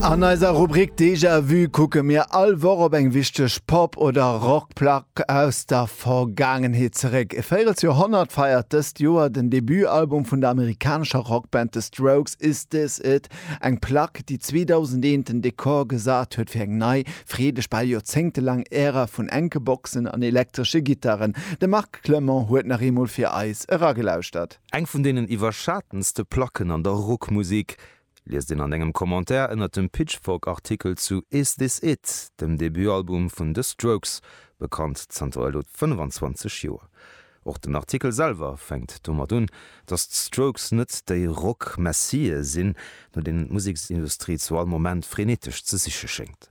An eiser Rubrik Déjà-vu kucke mir all Woch op eng wichteg Pop oder Rockplack aus der Vergaangenheet zeréck. E véirels Joerhonnert feiert dëst Joer den Debutalbum vun der amerikanescher Rockband The Strokes Is This It? Eng Plack, déi 2001 den Dekor gesat huet fir eng nei, freedeg, bal joerzéngtelaang Ära vun enke Boxen an elektresche Gittaren. De Marc Clement huet nach eemol fir eis eragelauschtert. Eng vun deenen iwwerschatenste Placken an der Rockmusek, Liest een an engem Commentaire ënnert dem Pitchfork-Artikel zu Is This It? dem Debutalbum vun The Strokes, bekannt zanter elo 25 Joer. Och den Artikel selwer fänkt domat un, datt d'Strokes net déi Rock-Messië sinn, no deenen d'Museksindustrie zu all Moment frenetesch ze siche schéngt.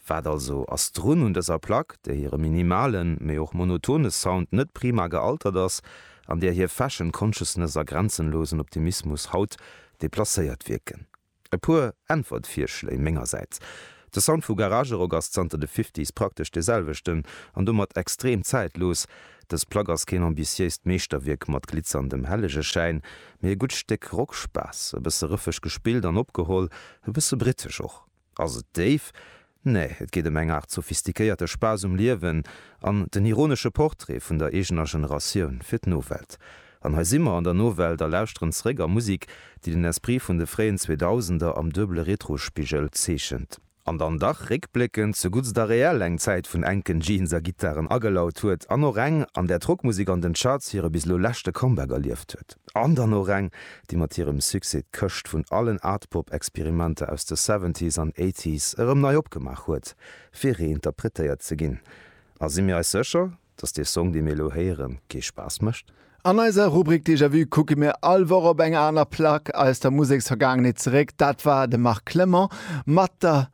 Wat also ass drun un dëser Plack, där hire minimale, mee och monotone Sound net prima gealtert ass, an där hir Fashion Consciousness a grenzenlosen Optimismus haut deplacéiert wierken? E puer Äntwertvirschléi mengersäits, De Sound vu Garagerock ass zanter de Fifties praktesch dee selwechten, an domat extrem zäitlos. Dës Plack ass keen ambitiéist Meeschterwierk mat glitzerndem Hellegeschäin, mee e gutt Stéck Rockspaass, e bësse rëffeg gespillt an opgeholl, e bësse britesch och. Ass et déif? Nee, et geet ëm eng Aart sophistikéierte Spaass um Liewen an den ironesche Portrait vun der eegener Generatioun fir d'Nowelt. An hei si mer an der Nowelt a lauschteren zeréck a Musik, déi den Esprit vun de fréien Zweedausender am duebele Retrospigel zeechent, an dann dach réckbléckend zu Guts da Real eng Zäit vun enken Jeans a Gittaren agelaut huet, an och eng, an där d'Rockmusik an den Charts hire bis elo leschte Comeback erlieft huet. An dann och eng, déi mat hirem Succès d'Këscht vun allen Art-Pop-Experimenter aus de Seventies an Eighties erëm nei opgemaach huet, fir reinterpretéiert ze ginn. A si mir eis sécher, dass dee Song, dee mir elo héieren, kee Spaass mécht? An eiser Rubrik Déjà-Vu kucke mir all Woch op eng aner Plack aus der Museksvergaangenheet zeréck. Dat war de Marc Clement mat der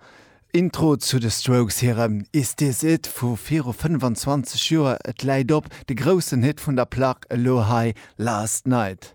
Intro zu de Strokes hirem Is This It vu viru 25 Joer, et läit op, de groussen Hit vun der Plack, elo hei Last Night.